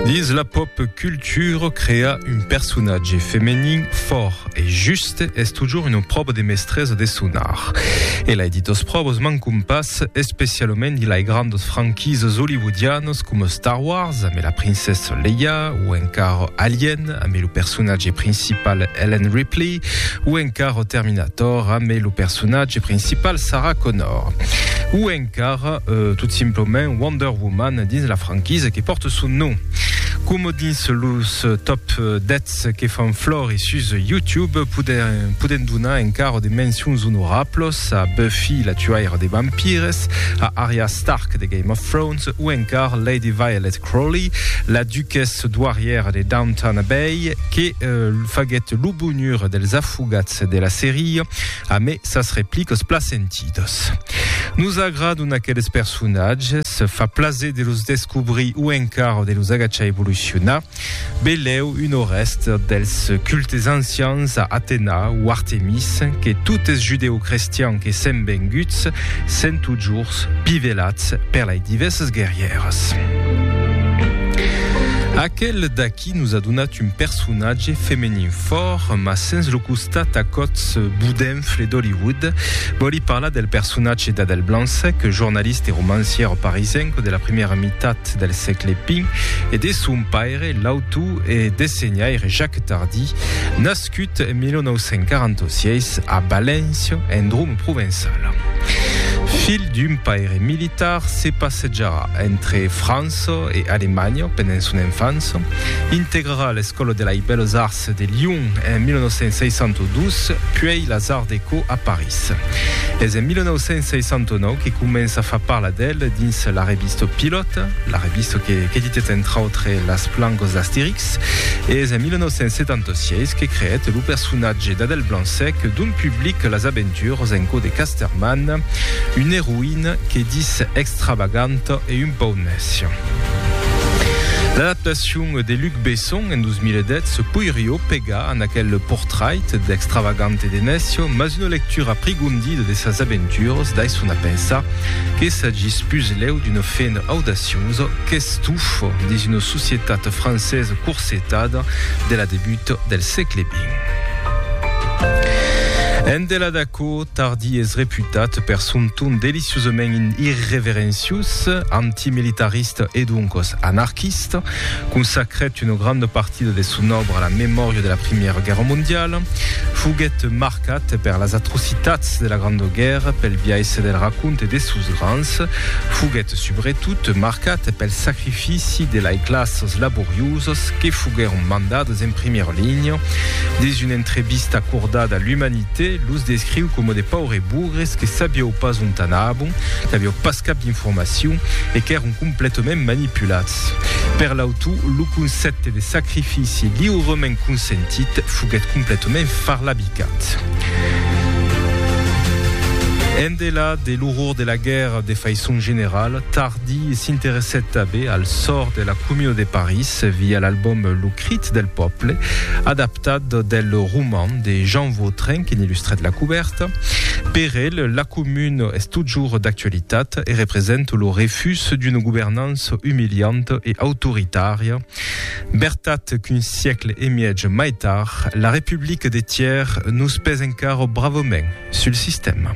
Dins la pop culture, crear un personatge femenin fòrt e juste es totjorn una pròva de mestresa de son art. E lai ditas pròvas mancon pas, especialament dins lai grandas franquisas hollywoodianas coma Star Wars ambe la princessa Leia o encara Alien ambe lo personatge principal Ellen Ripley o encara Terminator ambe lo personatge principal Sarah Connor. O encara car tot simplement Wonder Woman dins la franquisa que pòrte son nom. Coma dins los top 10 que fan flor e sus YouTube podèm donar encara de mencions onorablos a Buffy la tuaira de vampires, a Arya Stark de Game of Thrones o encara Lady Violet Crowley, la duquessa doirièra de Downton Abbey que faguèt lo bonheur dels afogats de la seria a mai sas replicas placenti. partidos. Nos agradon aqueles personatges, fa plaser de los descobrir o encara de los agachar evolucionar. Beleu un o rèst dels cultes ancians a Atena o Artemis que totes judeocrestians que sèm venguts sèn totjorns pivelats per lei divèrsas guerrièras. Aquel d'aqui. Qui nos a donat un personatge femenin fòrt, mas sens lo costat a còts bodenfle d'Hollywood. Vòli parlar del personatge d'Adèle Blanc-Sec, jornalista e romancièra parisenca de la primièra mitat del sègle xx, e de son paire, l'autor e dessenhaire Jacques Tardy, nascut Nascut en 1946 a València, en Droma provençala. Filh d'un paire militar, se passejarà entre França e Alemanha pendent son enfança, integrarà l'Escòla de lei Belles Arts de Lyon en 1962, puèi las Arts Déco a París. Es en 1969 que comença a far parlar d'el dins la revista Pilote, la revista que qu'editèt entre autres las plancas d'Astérix. Es en 1976 que creèt lo personatge d'Adèle Blanc-Sec dont public las aventures en cò de Casterman, una eroïna que ditz extravaganta e un pauc nècia. L'adaptacion de Luc Besson en 2010 poirió pegar en aquel portrait d'extravagant e de nècio, mas una lectura aprigondida de sas aventures daisson a pensar que s'agís puslèu d'una fena audaciosa qu'estufa dins una Societat francesa corsetada de la debut del sègle vint. En delà d'aquò, Tardy es reputat per son ton deliciosament irreverenciós, antimilitarista e doncas anarquista. Consacrèt una granda partida de son òbra a la memòria de la Primièra Guèrra Mondiala. Foguèt marcat per las atrocitats de la Granda Guèrra pel biais del raconte de sos grands. Foguèt subretot marcat pel sacrifici ofici de lai classes laborioses que foguèron mandades en primièra linha. Dins una entrevista acordada a l'Humanité, los descriu coma de paures bugres que sabieu pas ont anabon, n'avieu pas cap d'informacion e qu'èron completament manipulats. Per l'autor, lo concèpte de sacrifici liurement consentit foguèt completament farlabicat. Endela de l'orror de la guèrra de faiçon generala, tard, Di s'interessèt tanben al sòrt de la Commune de París via l'albòm Lo crit del pòble, adaptat del roman de Jean Vautrin que n'ilustrèt la cubèrta. Per el, la Commune es totjorn d'actualitat e represent lo refús d'una governança umilianta e autoritària. Bertat qu'un siècle e mièg mai tard, la Republique de Thiers nos pes encara bravament sul sistèma.